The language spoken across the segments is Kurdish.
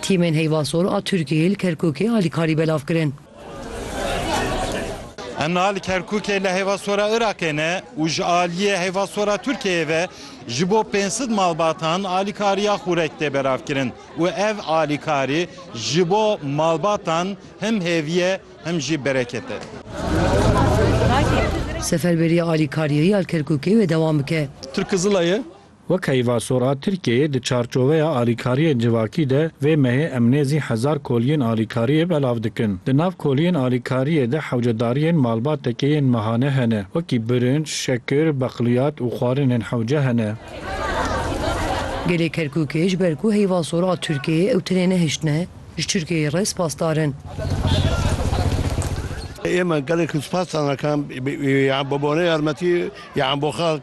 Tîmên Heyva Sor a Tirkiyeyê li Kerkûkê alîkarî belav kirin. Em niha li Kerkûkê li Heyva Sor a Iraqê ne û ji aliyê Heyva Sor a Tirkiyeyê ve ji bo pênc sed malbatan alîkariya xûrek tê belavkirin û ev alîkarî ji bo malbatan him hêvî ye him jî bereket e. Seferberîya alîkariyê ya li Kerkûkê wê dewam bike. Tirk Kizilayê Wek heyva sor a Tirkiyeyê di çarçoveya alîkariyên civakî de vê mehê em nêzî hezar koliyên alîkariyê belav dikin. Di nav koliyên alîkariyê de hewcedariyên malbateke yên mehane hene. Wekî birinc, şekir, beqliyat û xwarinên hewce hene. Gelê Kerkûkê ji ber ku heyva sor a Tirkiyeyê ew tenê nehiştine, ji Tirkiyeyê re spasdar in. Ême gelek spasdar nakin bi bo ne yarmetî yan bo xelk.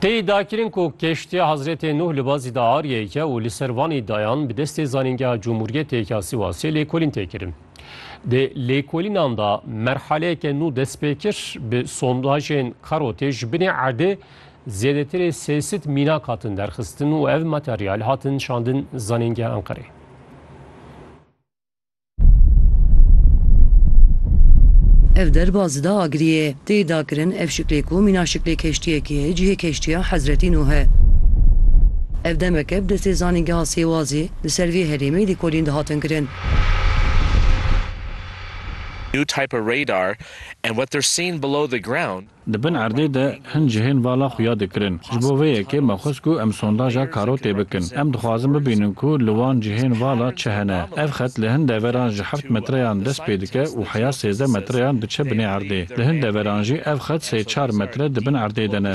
Tê iddiakirin ku keştiya Hezretê Nuh li bazî de ariyê ye û li ser van îddayan bi destê Zanîngeha Cumhuriyetê ya Sîwasê lêkolîn tê kirin. Di lêkolînan de merhaleyeke nû dest pê kir, bi sondajên karotê ji binê erdê zêdetirê sê sed mînak hatin derxistin û ev materyal hatin şandin Zanîngeha Enqereyê. Ev derba zida agirî ye. Tê dakirin ev şiklê ku mîna şiklê keştiyekê ye cihê keştiya Hezretî Nuh e. Ev demeke bi destê zanîngeha sêwazê li ser vê herêmê lêkolîn dihatin kirin. Di bin erdê de hin cihên vala xwe ya dikirin. Ji bo vê yekê me xwest ku em sondaja karotê bikin. Em dixwazin bibînin ku li wan cihên vala çi hene. Ev xet li hin deveran ji heft metreyan dest pê dike û heya sêzdeh metreyan diçe binê erdê. Li hin deveran jî ev xet sê çar metre di bin erdê de ne.